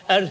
ar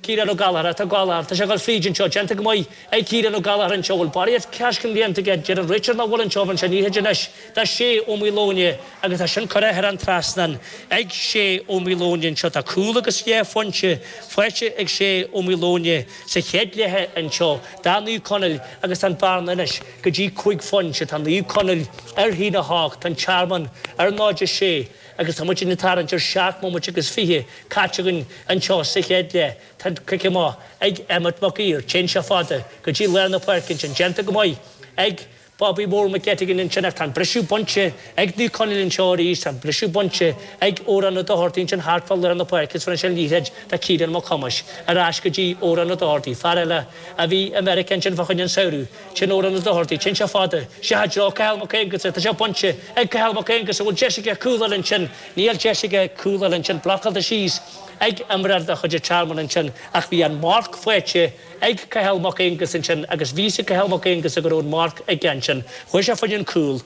Ciarán Ó Gallachar, rith galánta, tá sé ag dul fríd anseo, déanta go maith ag Ciarán Ó Gallachar anseo, bhfuil barraíocht coiscéim déanta aige, deireann Richard nach bhfuil anseo, bhronn sé liathróid anois do Shea Ó Maoileoin agus tá sin curtha thar an trasnán ag Shea Ó Maoileoin anseo, tá cúl agus dhá phointe faighte ag Shea Ó Maoileoin sa chluiche anseo do Naomh Conaill agus tá an bhearna anois go dtí cúig phointe, tá Naomh Conaill ar haon a hocht, tá an Tearmann ar 0-6. Agus tá muid ag tarraingt ar seacht mbomaite agus fiche caite againn anseo sa chéad leath. Tá cic amach ag Emmet Mac Uidhir, téann sé fada go dtí lár na páirce ansin, déanta go maith ag Bobby Mór McGettigan ansin ach tá an briseadh bainte ag Naomh Conaill anseo arís, tá an briseadh bainte ag Odhrán Ó Dochartaigh ansin thart fá lár na páirce agus ansin liathróid do Ciarán Mac Thomáis ar ais go dtí Odhrán Ó Dochartaigh, fear eile a bhí i Meiriceá ansin fá choinne an samhradh. Seo Odhrán Ó Dochartaigh, téann seo fada. Seo i dtreo Cathal Mac Aonghusa, tá seo bainte ag Cathal Mac Aonghusa, bhfuil deis aige cúl a fháil ansin, níl deis aige cúl a fháil ansin, blocáilte síos ag imreoir de chuid an Tearmainn ansin, ach bhí an marc faighte ag Cathal Mac Aonghusa ansin agus bhí a fhios ag Cathal Mac Aonghusa go raibh an marc aige ansin, chuaigh sé fá choinne an cúl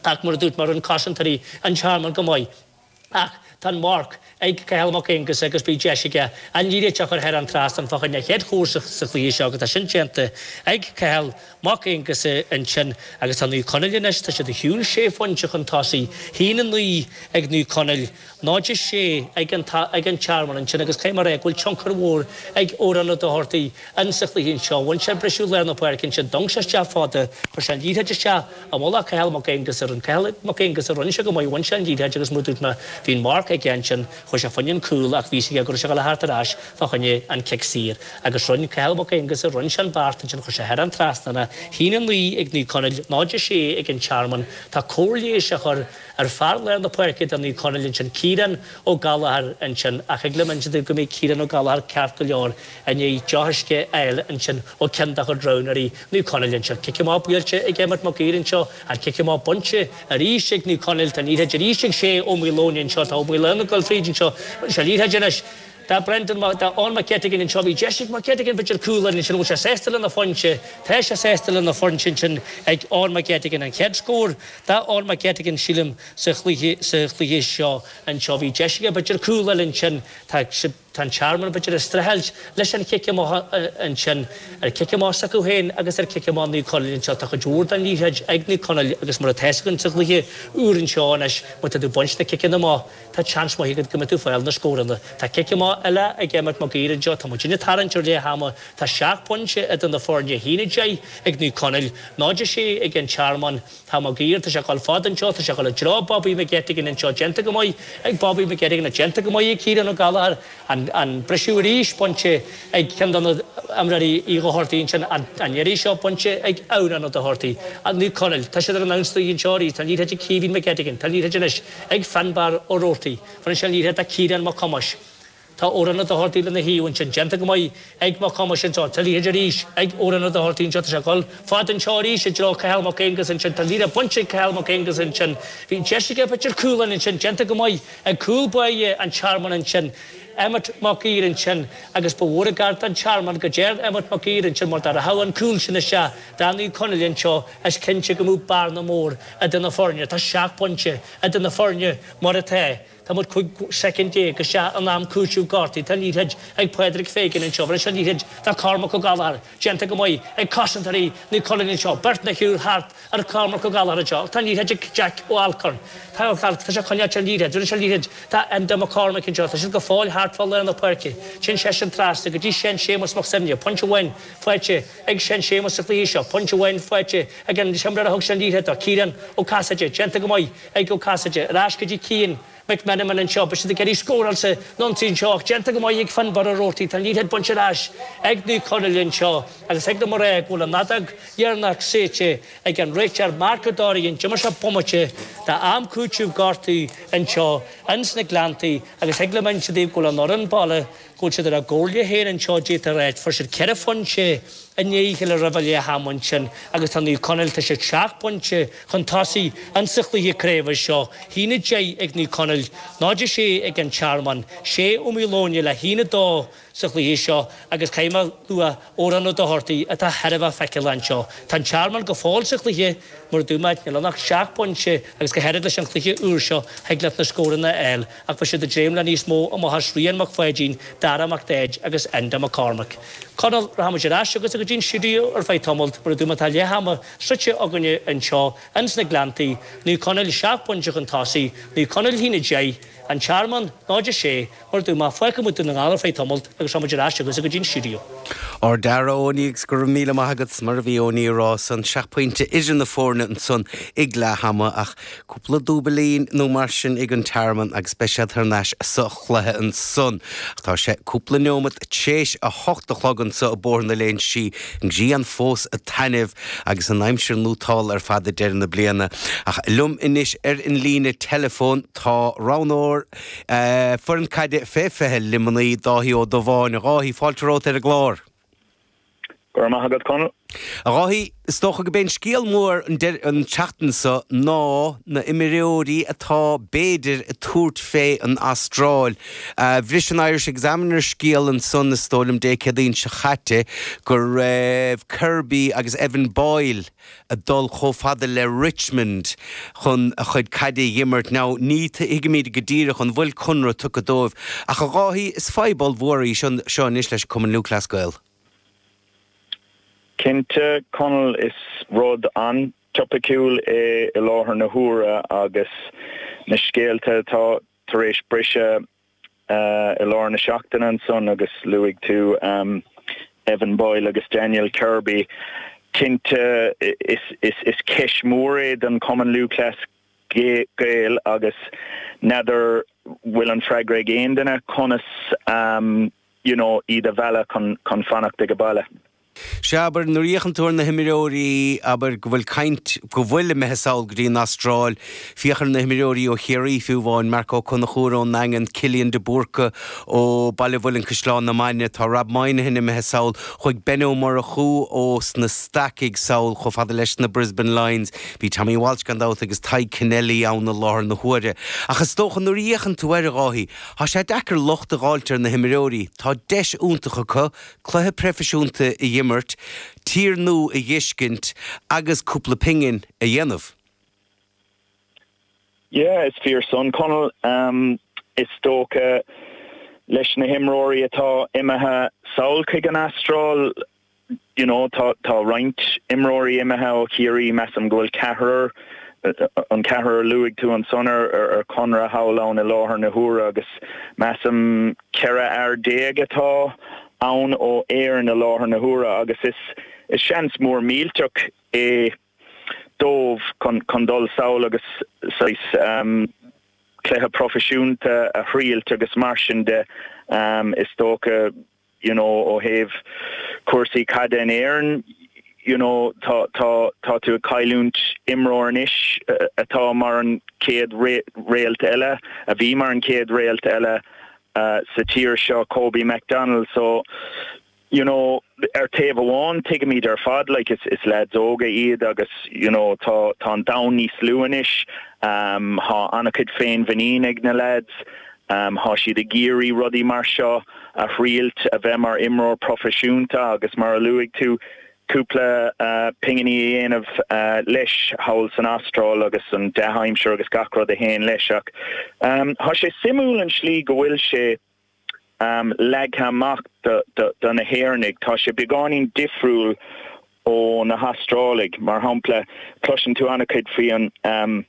ach mar a dúirt mé, rinne cosantóirí an Tearmainn go maith. Ach tá an marc ag Cathal Mac Aonghusa agus beidh deis aige an liathróid seo a chur thar an trasnán fá choinne a chéad chúl sa chluiche seo agus tá sin déanta ag Cathal Mac Aonghusa ansin agus tá Naomh Conaill anois, tá siad chun, sé phointe chun tosaigh, haon a naoi ag Naomh Conaill, náid a sé ag an Tearmann ansin agus cé mar go bhfuil tionchar mhór ag Odhrán Ó Dochartaigh insa chluiche anseo, bhain sé briseadh lár na páirce ansin, d'fhan sé isteach fada, chuir sé an liathróid isteach. A mholadh, Cathal Mac Aonghusa rinn Cathal Mac Aonghusa rinn sé go maith bhain sé an liathróid agus mar a dúirt mé bhí an marc aige ansin chuaigh sé fá choinne an cúl ach bhí a fhios aige go raibh sé ag gabháil a theacht ar ais fá choinne an cic saor agus rinn Cathal Mac Aonghusa rinn sé an beart ansin chuir sé thar an trasnán a haon 9 ag Naomh Conaill 0 6 ag an Tearmann tá cóir leighis á chur ar fear lár na páirce do Naomh Conaill ansin Ciarán Ó Gallagher ansin ach thig liom insint daoibh go mbeidh Ciarán Ó Gallagher ceart go leor I ndiaidh deoch uisce a fháil ansin ó cheann dá chuid roghnóirí, Naomh Conaill, anseo, Cic amach buailte ag Emmet Mac Uidhir anseo, an chic amach bainte arís ag Naomh Conaill, tá liathróid arís ag Shay Ó Maoileoin anseo, tá Ó Maoileoin ag dul tríd anseo, seo liathróid anois do Brendan, do Eoin Mac Etegan anseo, bhí deis ag Mac Etegan b'fhéidir cúl a fháil ansin, an bhfuil sé sásta lena phointe? Tá sé sásta lena phointe ansin ag Eoin Mac Etegan, an chéad scór do Eoin Mac Etegan sílim sa chluiche, sa chluiche seo anseo, bhí deis aige b'fhéidir cúl a fháil ansin, tá sé. Tá an Tearmann, b'fhéidir, ag streachailt leis an chic amach ansin ar chic amach s'acu féin agus ar chic amach Naomh Conaill anseo. Tá cuid mhór den liathróid ag Naomh Conaill agus mar atá a fhios againn sa gcluiche úr anseo anois, má tá tú ag baint na ciceanna amach, tá seans maith agat go mbeidh tú ag fáil na scóranna. Tá cic amach eile ag Emmet Maguire anseo. Tá muid ag tarraingt ar leath ama. Tá seacht bpointe idir na foirne, haon a deich ag Naomh Conaill, 0 a sé ag an Tearmann. Tá Mac Uidhir, tá sé ag dul fad anseo, tá sé ag dul i dtreo Bobby McGettigan anseo, déanta go maith ag Bobby McGettigan, tá déanta go maith ag Kieran Ó Gallchóir, an an briseadh arís bainte ag ceann de na Dochartaigh ansin, an an iarraidh seo bainte ag Odhrán Ó Dochartaigh, an Naomh Conaill, tá siad ar an ionsaí anseo arís, tá an liathróid ag Caoimhín McGettigan, tá an liathróid anois ag Finbarr Roarty, roinneann sé an liathróid le Ciarán Mac Thomáis. Tá Odhrán Ó Dochartaigh lena thaobh ansin déanta go maith ag Mac Thomáis anseo. Tá an liathróid arís ag Odhrán Ó Dochartaigh anseo, tá sé ag dul fad anseo arís i dtreo Cathal Mac Aonghuis ansin, tá an líne bainte ag Cathal Mac Aonghuis ansin. Bhí deis aige b'fhéidir cúl ansin déanta go maith ag cúl báire an Tearmainn ansin, Emmet Mac Uidhir ansin, agus ba mhór an gar don Tearmann go dtí Emmet Mac Uidhir ansin mar dá rachadh an cúl sin isteach do Naomh Conaill anseo is cinnte go mbeadh bearna mhór idir na foirne, tá seacht bpointe idir na foirne mar atá. Tá muid 15 soicind, isteach in am cúiteamh gortaithe. Tá an liathróid ag Mac Pháidín anseo, bheir sé an liathróid do Cormac Ó Gallchóir, déanta go maith ag cosantóirí Naomh Conaill anseo, beirt nó triúr thart ar Chormac Ó Gallchóir anseo, ach tá an liathróid ag Jack Alcorn, tá sé ag coinneáilt an liathróid, bheir sé an liathróid do Enda McCormick anseo, tá siad go fóill thart fá lár na páirce, téann seisean trasna go dtí Sean Séamus Mac Suibhne, pointe amháin faighte ag Sean Séamus sa chluiche seo, pointe amháin faighte ag an imreoir a thug sé an liathróid dó, Ciarán Ó Casaide, déanta go maith. Ag Ó Casaide. Ar ais go dtí Cian McMenamin anseo. Beidh siad ag iarraidh scóráil san ionsaí anseo ach déanta go maith ag Finbarr Roarty. Tá an liathróid bainte ar ais ag Naomh Conaill anseo agus thig liom a rá go bhfuil an fheadóg dheireanach séidte ag an réiteoir Mark O'Doherty. Níor imir sé bomaite de am cúiteamh gortaithe anseo ins na Gleanntaí agus thig liom inse daoibh go bhfuil an fhoireann bhaile Go bhfuil siad ar a gcomhairle féin anseo de réir. Fuair siad ceithre phointe i ndiaidh a chéile roimh leath am ansin agus tá Naomh Conaill, tá siad seacht bpointe chun tosaigh insa chluiche craoibhe seo. hAon a deich ag Naomh Conaill, 0 a sé ag An Tearmann. Shea Ó Maoileoin le haon a dó sa chluiche seo agus caithfidh mé a lua Odhrán Ó Dochartaigh atá thar a bheith feiceálach anseo. Tá An Tearmann go fóill sa chluiche mar a dúirt mé, níl ann ach seacht bpointe agus go háirid leis an chluiche úr seo thig leat na scóranna a fháil. Ach bhí siad ag dréim le níos mó, ó mhacasamhail Rian Mac Pháidín, Dara Mac Daid agus Enda Mac Cormaic. Conall, rachaimid ar ais agus go dtí an stiúideo ar feadh tamaill, mar a dúirt mé tá leath ama sroichte againne anseo ins na Gleanntaí, Naomh Conaill seacht bpointe chun tosaigh, Naomh Conaill a haon a 10, An Tearmann 0, 6, mar a dúirt mé, fágfaidh muid Dún na nGall ar feadh tamaill agus rachaimid ar ais agus go dtí an stiúideo. Ar Owenie 's go raibh míle maith agat 's mar a bhí Owenie ag rá ansan seacht pointe idir na foirne ansan ag leath ama ach Cúpla dúbailín nó mar sin ag an Tearmann agus beidh siad thar n-ais sa chluiche ansan. Tá sé cúpla neomat t'réis a hocht a chlog anso i mBothar na Léinsí. Grian fós ag taitneamh agus an aimsir nótálta ar fad ag deireadh na bliana. Ach linn anois ar an líne teileafóin tá roghnóir foireann caide fé fiche Luimnigh, Dáithí Ó Dubháin. A Dháithí, fáilte romhat ar an gclár. Go raibh maith agat, Conall. A Dháithí, is dócha go b'é an scéal mór an tseachtain seo ná na h-imreoirí atá, b'fhéidir, ag tabhairt fé an Astráil. Bhris an Irish Examiner scéal ansan, is dóigh liom, Dé Céadaoin seo chaite, go raibh Kirby agus Evan Boyle, ag dul chomh fada le Richmond chun a chuid caide a dh'imirt. Now, ní thuigimid go díreach an bhfuil conradh tugtha dóibh, ach a Dháithí, is fadhb ollmhór í seo anois leis an Cumann Lúthchleas Gael. Cinnte, Conall, is rud an-topaiciúil é i láthair na huaire agus na scéalta atá tar éis briseadh. i lár na seachtaine ansan agus luaigh tú, em, Evan Boyle agus Daniel Kirby. Cinnte is ceist mhór é don Chumann Lúthchleas Gael agus n'fheadar bhfuil an freagra ag aon duine conas, um, you know, iad a mhealladh chun fanacht ag a baile. Sea, abair, nuair a fhéachann tú ar na himreoirí, abair go bhfuil caint, go bhfuil imithe sall go dtí an Astráil, féach ar na himreoirí ó Chiarraí, fiú amháin, Marc Ó Conchúir ón nDaingean, Cillian de Búrca ó Bhaile an Mhuilinn, Caisleán na Mainge, tá Rob Monahan imithe sall, chuaigh Ben Ó Murchú ó sna Stacaigh, sall chomh fada leis na Brisbane Lions, bhí Tommy Walsh, gan dabht, agus Tadhg Kennelly ann i láthair na huaire. Ach is dócha, nuair a fhéachann tú air, a Dháithí, tá sé deacair locht a dh'fháilt ar na himreoirí, tá deis iontach acu, Cluiche proifisiúnta a dh'imirt, tír nua a dh'fheiscint agus cúpla pingin a dhéanamh. Yeah, is fíor san, Conall. Em, is dócha, leis na himreoirí atá imithe sall chuig an Astráil, you know, tá roinnt imreoirí imithe ó Chiarraí, measaim go bhfuil ceathrar, An ceathrar a luaigh tú ansan ar conradh thall ann i láthair na huaire agus measaim 14 fhear atá ann ó Éirinn i láthair na huaire agus is seans mór millteach é dóibh chun dul sall agus saghas cluiche proifisiúnta a thriailt agus mar sin de, em, is dócha you know, ó thaobh cúrsaí caide in Éirinn, you know, tá, tá, tá tú ag cailliúint imreoir anois atá mar an chéad réalt eile, a bhí mar an chéad réalt eile sa tír seo, Kobe McDonald. So, you know, ar taobh amháin tuigimid ar fad, like, is, is leaids óga iad agus, you know, tá, tá an domhan níos lú anois, um, tá an-chuid féinmhuinín ag na leaids, Tá siad ag iarraidh rudaí mar seo a thriailt, a bheith mar imreoir proifisiúnta agus, mar a luaigh tú, cúpla pinginí a dhéanamh leis thall san Astráil agus an dea-aimsir agus gach rud a théann leis. Ach tá sé suimiúil an tslí go bhfuil sé leagtha amach do na hÉireannaigh. Tá sé beagáinín difriúil ó na hAstrálaigh. Mar shampla, cloiseann tú an-chuid faoi an.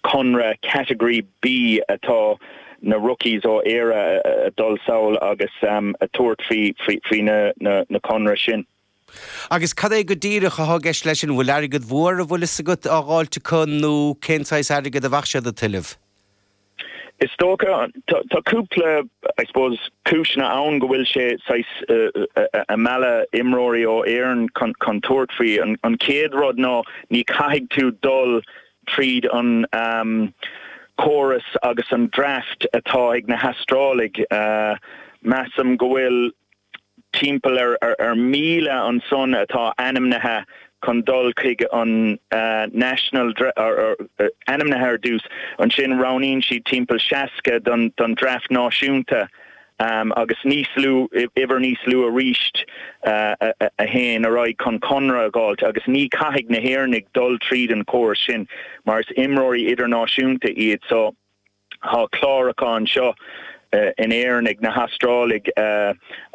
conradh Category B atá na rookies ó Éire a dul sall agus a thabhairt faoi, faoi na conradh sin. Agus cad é go díreach atá i gceist leis sin? An bhfuil airgead mhór a bhfuil fhios agat á dh'fháilt acu nó cén saghas airgead a bheadh siad a' tuilleamh? Is dócha, tá cúpla, I suppose, cúiseanna ann go bhfuil sé saghas ag mealladh imreoirí ó Éirinn chun tabhairt faoi. An chéad rud ná ní chaithfidh tú dul tríd an córas agus an draft atá ag na hAstrálaigh. Measaim go bhfuil timpeall ar 1,000 ansan atá ainmnithe chun dul chuig an National Draft, ainmnithe ar dtús, ansin roghnaíonn siad timpeall 60 don Draft Náisiúnta agus níos lú, uimhir níos lú arís, a théann ar aghaidh chun conradh a dh'fháilt. Agus ní chaithfidh na hÉireannaigh dul tríd an chóras sin mar is imreoirí idirnáisiúnta iad so. Tá clárachán seo in Éirinn ag na hAstrálaigh.